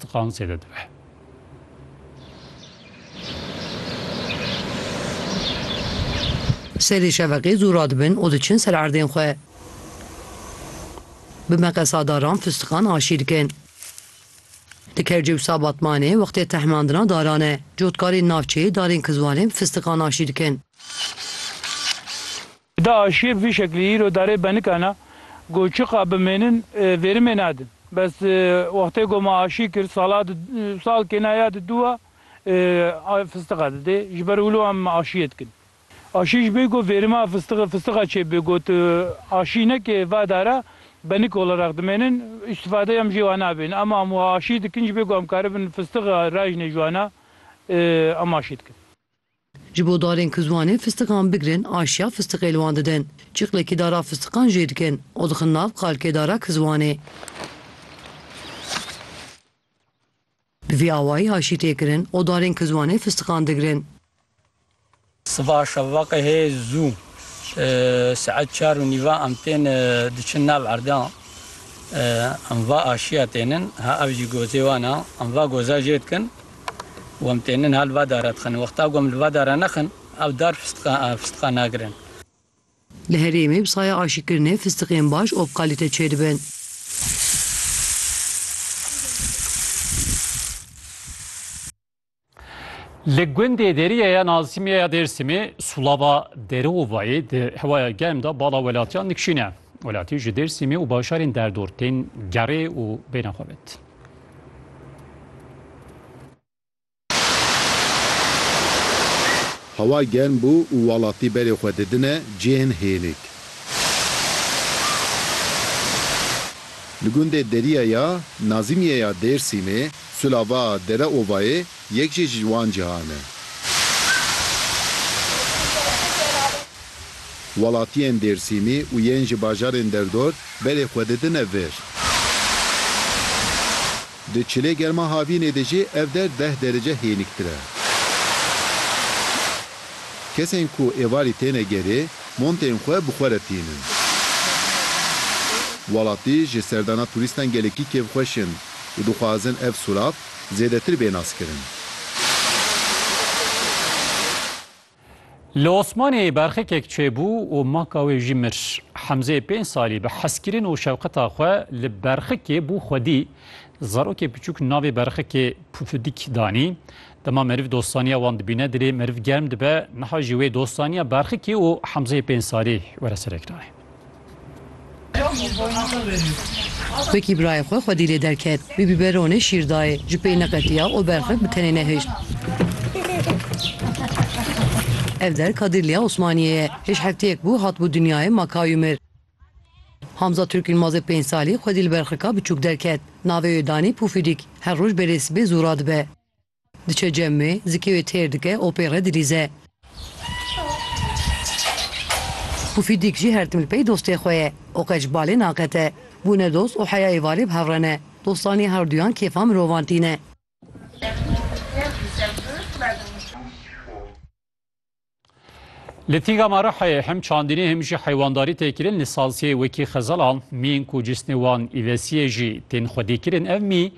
Tiqan zêde dibe. Serê şeveqê zû radibin û diçin ser erdên xwe. Bi meqesadaran fistiqan aşî dikin. Di Kercewsa Batmanê wextê tehmandina daran e. Cotkarên navçeyê darên kizwanê bi fistiqan aşî dikin. Da aşiyê bi vî şeklî îro darê benikan a ku çiqa bimênin vêrimê nadin. Bes wextê ku ma aşî kir sala di sal kêna ya di dû a fistiqa didê ji ber wilo em aşiyê dikin. Aşî ji bê ku vêrima fistiqê fistiqa çê bibê ku tu aşî nekê va dara benik olareq dimênin îstîfadeyê em jê wa nabêjin. Em am wa aşî dikin ji bê ku em karibin fistiqa rajnê ji wan a em aşî dikin. Ji bo darên ku ziwanên fistiqan bigirin aşiya fistiqê li wan didin. Çiqlekî dara fistiqan jê dikin û dixin nav qalkê dara ki ziwanê. Bi vî awayî aşî tê kirin û darên ki ziwanê fistiqan digirin. Siva şevaqehê zû saet çar û nîva em tên diçin nav erdan. Em va aşiya tênin. Ha ev jî gozê wan e. Em va goza jê dikin. û em tên niha li va dara dixin. Wexta ku em li va dara nexin, ev dar fistiqa nagirin. Li herêmê bi saya aşîkirinê fistiqên baş û bi kalîte çêdibin. Li gundê Derîye ya Nazîmê ya Dêrsimê sulava Dereovayê di hewaya germ de bala welatiyan dikişîne. Welatî ji Dêrsimê û bajarên derdor tên gerê û bêne xwe vêt. Hewa germ bû û welatî berê xwe didine cihên hênik. Li gundê Deriya ya Nazimiye ya Dêrsîmê, Sulava Dereovayê Yek jî ji wan cihan e. Welatiyên Dêrsîmî û yên ji bajarên derdor berê xwe didine vir. Di çilê germa havînê de jî ev der deh derece hêniktir e. Kesên ku êvarî têne gerê, montên xwe bi xwe re tînin. Welatî ji serdana turîstan gelekî kêfxweş in û dixwazin ev surav zêdetir bê naskirin. Li Osmaniyê berxekek çêbû û maka wê jî mir. Hemzeyê pênc salî bi hezkirin û şewqeta xwe li berxekê bû xwedî. Zarokê piçûk navê berxekê Pufidik danî. Dema meriv dostaniya wan dibîne dilê meriv germ dibe, niha jî wê dostaniya berxekê û Hemzeyê pênc salî were serek nayê. Wekî birayê xwe xwedî lê derket. Wî bîberonê şîr dayê. Ji pey neqetiya û berxek bi tenê nehişt. Ev der Kadîrliya Osmaniyê ye. Hêj hefteyek bû hatibû dinyayê ma ka wî mir. Hamza Turk Yilmazê pênc salî xwedî li berxeka biçûk derket. Navê wê danî Pûfîdîk. Her roj belê sibê zû radibe. Diçe cem wê, zikê wê têr dike, opê re dilîze. Pufîdîk jî her tim li pey dostê xwe ye û qet ji balê naqete. Bûne dost û heyayê valê bi hev re ne. Dostanî her duyan kêfa mirovan tîne. Li Tîga Marihayê hem çandînê hem jî heywandarî tê kirin li salsiyê wekî xezalan, mîyên ku cîsnê wan îvesiyê jî tên xwedîkirin ev mî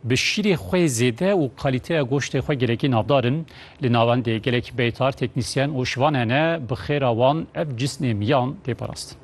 bi şîrê xwe zêde û kalîteya goştê xwe gelekî navdar in. Li navendê gelek beytar, teknîsyen û şivan hene bi xêra wan ev cîsnê mîyan tê parastin.